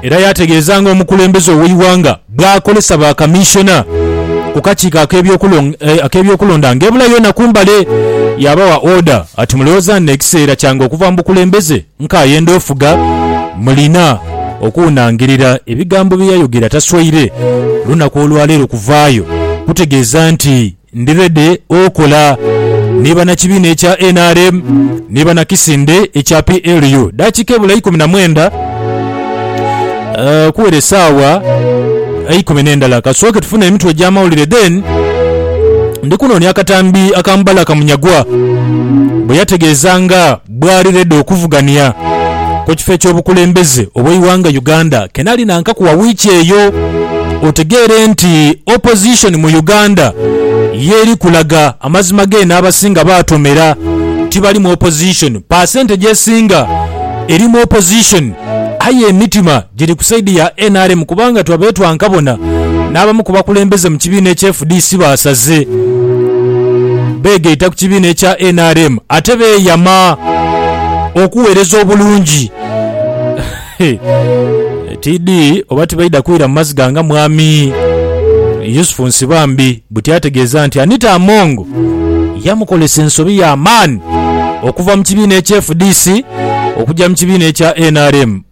Era yaategeeza ng'omukulembeze ow'eighanga bw'akolesa ba kamissiona ku kakiiko ak'ebyokulonda ng'ebula yoona ku mbale yaabawa order ati mulowooza nno ekiseera kyange okuva mu bukulembeze nkaayenda ofuga? Mulina okuwunangirira ebigambo bye yayogera taswaire lunaku olwaleero kuvaayo kutegeeza nti Ndi ready okola ni banakibiina ekya nrm ni banakisinde ekya PLU. Dakiika ebula ikumi na mwenda okuwera esaawa eikumi nendala. Kasooke tufune emitwe egyamawulire then ndi kunoonia akatambi aka Mubalaka Munyagwa, bweyategeeza nga. bwali redi okuvugania ku kifo eky'obukulembeze obw'eighanga Uganda ke nali nankaku wa wiiki eyo. Otegeere nti Opposition mu Uganda ye eri kulaga amazima geene abasinga baatomera tibali mu Opposition. Paasente gy'esinga eri mu Opposition aye emitima giri ku saidi ya nrm kubanga twa betwanka bona n'abamu ku bakulembeze mu kibiina ekya fdc baasaze beegaita ku kibiina ekya nrm ate beeyama okuweereza obulungi TD oba tibaidha kwira mu maziga nga Mwami Yusufu Nsibambi buti ategeeza nti Anita Among yamukolesa ensobi ya maani okuva mu kibiina ekya fdc okugya mu kibiina ekya nrm.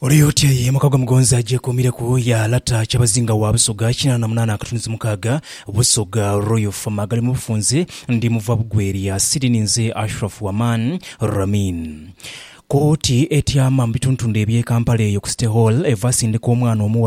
Ole otya ye muka gwa Mugonzi agyekuumireku ya lata Kyabazinga wa Busoga kinaana na munaana akatunzi mukaaga, Busoga Royal Farm agali mu bufunze. Ndi muva Bugwelya City ninze Ashraf Waman Ramin. Kooti etyama mu bituntundu eby'e Kampala eyo ku City Hall evasindika omwana omughala,